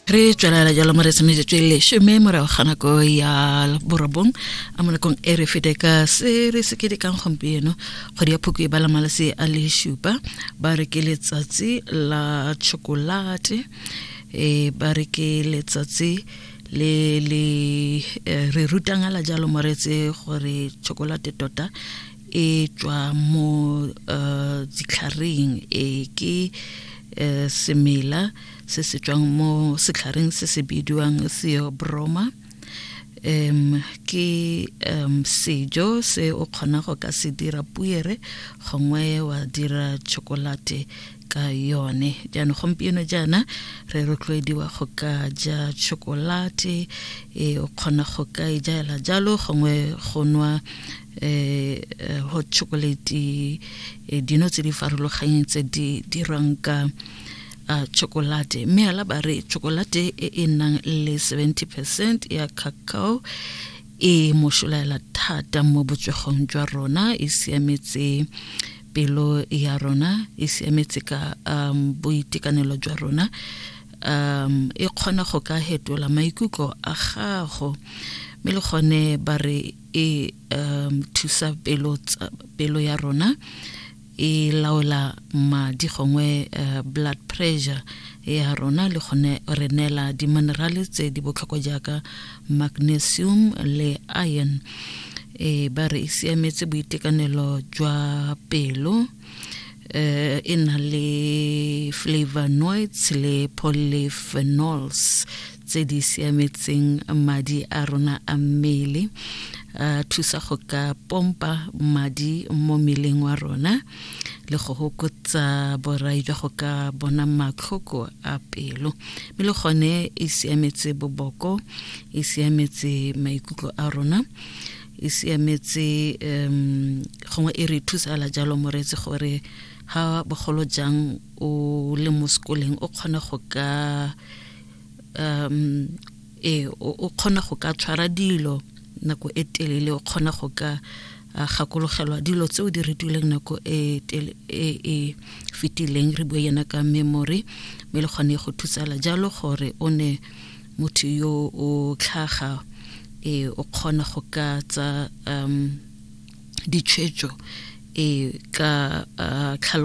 re tswelela jalo mo re tshwanetse le shome morago ga nako ya borobong a mo nakong e re fete ka se re se kedekang gompieno kgwedi ya phoko e bala malase a le šupa ba re ke letsatsi la chokolate e ba re ke letsatsi le le eh, re rutangala jalo moretse gore chokolate tota e tswa mo uh, ditlhareng e ke uh, semela se se tswang mo setlhareng se se bidiwang theobroma um ke um sejo se o kgona go ka se dira puere gongwe wa dira chocolate ka yone jaanong gompieno jaana re rotloediwa go ka ja chocolate e o kgona go ka e jaela jalo gongwe go nwa eh, eh hot chocolate eh, dino tse di farologanyeng tse di dirwang ka uh, chocolate mme ala ba re chocolate e e nang le 70 percent ya cacao e mošolaela thata mo botswegong jwa rona e siametse pelo ya rona e siametse ka um, boitekanelo jwa rona um e kgona go ka hetola maikutlo a gago mme le gone ba re e um thusa pelo pelo ya rona e laola madi gongwe uh, blood pressure ya rona le gone re neela di-minerale tse di botlhokwa jaaka magnesium le iron e ba re e siametse boitekanelo jwa pelo eh e na le flavonoids le polyphenols tse di siametseng madi a rona a mmele a thusa go ka pompa madi mo mmeleng wa rona le go hokotsa borai jwa go ka bona matlhoko a pelo mme le gone e siametse boboko e siametse maikutlo a rona e siametse um gongwe e re thusala jalo moreetsi gore ga bogolo jang o le mo sekoleng o kgone go ka um e o kgona go ka tshwara dilo nako e telele o kgona go ka gakologelwa dilo tse o di retileng nako e, e, e fetileng re bue yena ka memory mme le kgone go thusala jalo gore o ne motho yo o tlhaga e o kgona go ka tsa um ditshwetso e ka uh,